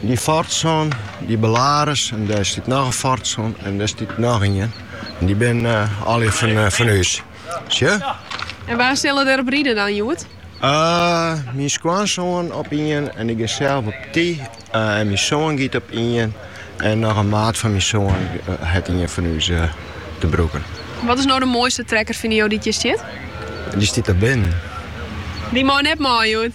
Dy Fordson, dy Belarus en dêr stiet noch in Fordson en dêr stiet noch ien. En dy binne eh, allegear fan, eh, fan ús. Sjoch? En wa sille der op ride dan, Sjoerd? Eh, myn skoansoan op ien en ik gean sels op dy. Eh, en myn soan giet op ien. En noch in maat fan myn soan eh, hat ien fan ús eh, te brûken. Wat is no de moaiste trekker fine jo dy't hjir stiet? Dy stiet der binnen. Dy mei net mei, Sjoerd.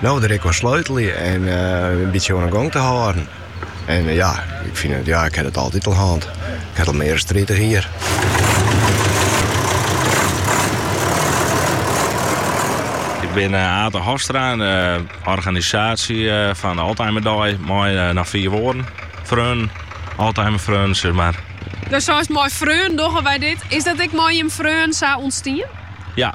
No der ek oan sleutelje en eh, in bytsje oan 'e gong te hâlden. En eh, ja, ik fyn it, ja, ik ha it altyd al hân. Ik ha it al mear as tritich jier. Ik bin eh, Ate Hofstra, in eh, organisaasje eh, fan de Alzheimer Dei. Mei in aantal fjouwer oare freonen, Alzheimer freonen, sis mar. Dus sa as mei freonen dogge wy dit. Is dat ek mei freonen sa ontstien? Ja,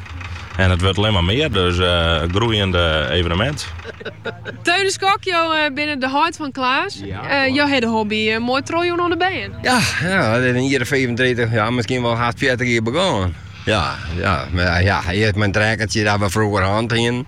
En it wurdt allinne mar mear, dus in groeiend evenemint. Teun de Kok, jo binne de heit fan Klaas. Jo hawwe de hobby moai trochjûn oan de bern. Ja, it is in jier of fiifentritich, ja, miskien wol hast fjirtich jier begûn. Ja, ja, ja, earst mei in trekkertsje dat we froeger hân hienen.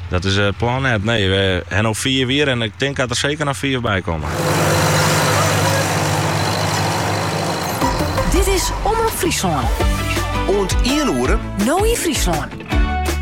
Dat is it plan net, nee. We ha no fiif jier en ik tink dat der seker noch fiif by komme. Dit is Omrop Fryslân. Oant ien oere. No yn Fryslân.